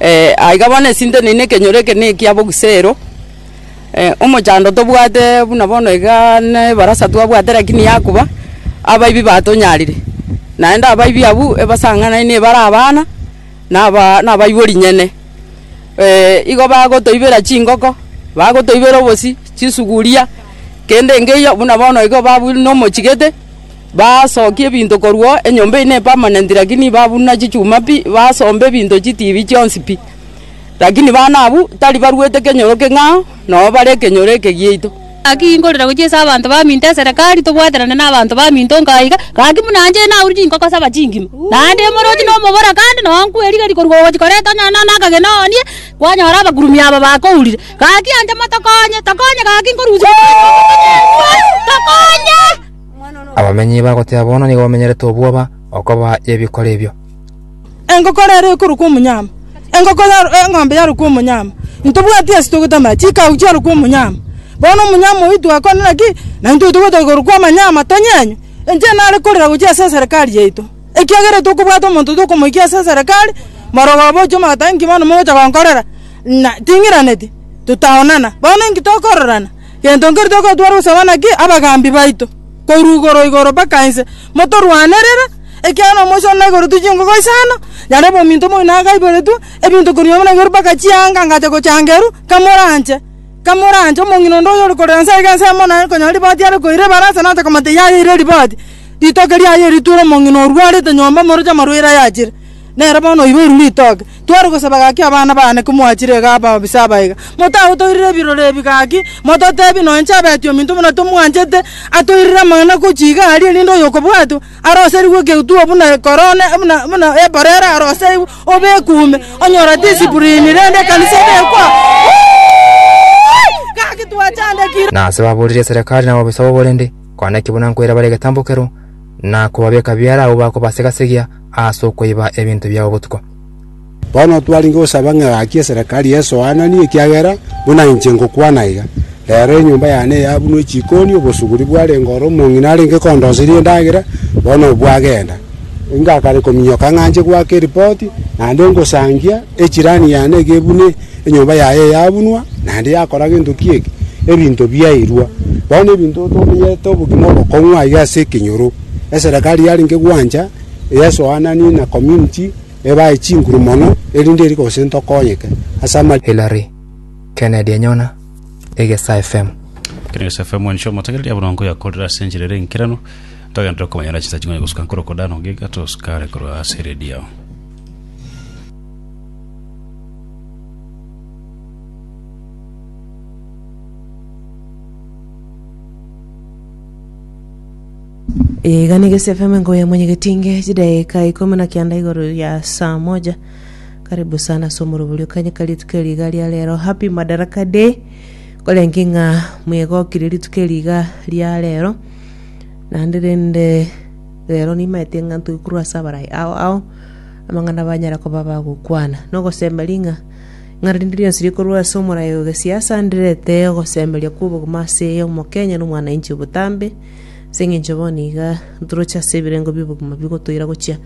Eh, aiga bono esinteneine ekenyoro eke na ekia bogusero, eh, omochando tobwate buna bono igaa ne ebarasa twabwate rakini yakuba, abaibi batonyarire, naende abaibi abwo ebasang'anaini ebare abana na abaa na abaibori nyene. igo bagotoibera chingoko, bagotoibera obosi, chisuguria, kende engeiyo buna bono igo babu nomochigete. Basokia ebinto korwa enyomba eyio nepamanenti, lakini babuna chichuma pi, basomba ebinto chitibi chionsi pi. Lakini bana abwo tari baruete kenyoro keng'ao, nao bare ekenyoro eke giaito. Gaki inkorera gochia ase abanto baminto eserekari, tobwaterane n'abanto baminto onka iga, gaki buna inche naurire inkoko saba chingima, naende imorochi na omobora, kandi noo nkwe rigeri korwa ogochi kore tonyore nonya akagena oonie, kwanyora abakurumi aba bakourire. Gaki inche motokonye, tokonye gaki nkorusia omochie obo, tokonye! Abamenyi bagoteba bono nigo bamenyerete obwoba okoba y'ebikoro ebio. Engoko rero ekorokwa omonyama, engoko yaro, eng'ombe yarokwa omonyama, ntobwati ase togotama, chikau chiarokwa omonyama. Bono omonyama oyio twakonera ki? Na intwe tobwate korokwa amanyama tonyenywe? Inche nare korera gochia ase eserekari yaito, ekiagera tokobwata omonto tokomoikia ase eserekari, marogo abochio magoteba inki bono mogocha gonkorera? Na ting'iraneti totaonana, bono inki tokororana? Gento nkeri togotwara gosaba naki abagaambi baito, korwa igoro igoro mpaka inse, motorwanerere, ekiagera nomochie one na igoro tigwe chingogo isano, nyarebe ominto omoino agaiboretwe ebinto korwa nyuma na igoro mpaka chianga ngacha gochanga eru, kamoranche, kamoranche, omong'ina onde oyore korera inse aiga ense emo naye konyora riboti are koira ebarasa nache komanya teiyayeire riboti, ritoke riaye riture omong'ina orwarete nyomba moroche amarwaire ayachire. Nere bono oiboirwe ritoke. Tware gosaba gaki abana baane komwachire iga ababisa abaega. Motagotoirera ebirore ebi gaki, mototeebie nonya inche abeti ominto buna tomwanchete, atoirere amang'ana gochia iga aria rende oyokobwatwa aroserigwe egetuo buna ekorone, buna eborere aroserigwe, obekwe ime, onyore discipline, rende ekanisa ebekwe aa. Gaki twachandekire. Na ase baboorire eserekari nababisa bobo rende, kwana ekebunanko ere bare egetambo keroo, na kobabeka biara agwo bakobasega-segia, as'okoiba ebinto biao botuko. Bono twarenge gosaba ng'a gaki eserekari esoananie, ekiagera buna inche ngokwana iga, rero enyomba yane yabunwe chikoni, obosuguri bwarenge oro omong'ina arenge kondoseria endagera, bono bwagenda. Ingakare kominyoka ng'a nche goaka eripoti, naende ngosangia. Echirani yane eke buna enyomba yaye yabunwa, naende yakora gento ki eke? Ebinto biairwa. Bono ebinto tomenyerete obogima obokong'u aiga ase ekenyoro. Eserekari yarenge gwancha eyasoananie na community ebae chinguru mono erinde eri gose ntokonyeke ase ama Hillary Kennedy enyona Egesa FM. Kera Egesa FM mwancho omotegereri ya buna nkoyakorera ase enchera ere enkeranu, ntogenderere komanya na chinsa ching'ai gosuka nkorokwo dano giga tosukare korwa ase eredio. Iga nigo esefeme ngoya mwenyegetinge chidaika ikomi na kianda igoro ya saa moja karibu sana ase omoroborio kanye ka rituko eri iga ria rero happy madaraka day korenki ng'a mwegokire rituko eri iga ria rero naende rende Rero nimaete ng'a ntwe korwa ase abarai ao ao, amang'ana banyare koba bagokwana, na ogosemeria ng'a ng'ana rinde rionsi rikorwa ase omorai o gesiasa ndirete ogosemeria kw'obogima ase Omokenya na omwananchi obotambe, ase eng'encho bono iga ntoroche ase ebirengo bi'obogima bigotoira gochia.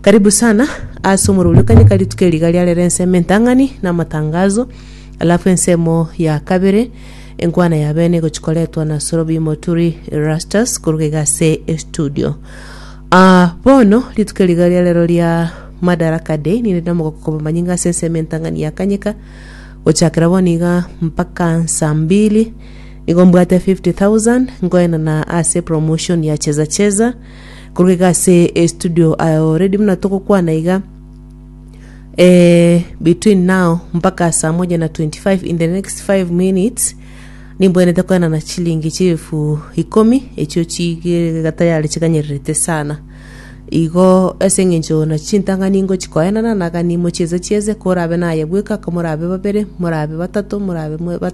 Karibu sana ase omorweri o kanyeka rituko eri iga riarera ensemo entang'ani na amatangazo, alafu ensemo ya kabere. Enkwana ya bene igochi koretwa na Sorobi Moturi Erastus koruga iga ase estudio. Ah, bono rituko riga ria rero ria Madaraka Day ninde namogoko koba manyinga ase ensemo entang'ani ya Kanyika gochakera bono iga mpaka nsa mbili nigo mbwate 50,000 nkoenana ase promotion ya Cheza Cheza koruga iga ase estudio aye already buna togokwana iga eh, between now mpaka saa moja na 25 in the next 5 minutes nimbwenete kwenana chilingi chiefu ikomi echio chigega tayari chikanyererete sana igo ase eng'encho na chintang'ani ingo chikoenana nagani mochieze chieze korabe naye bweka komorabe babere morabe batato morabe mwe- batano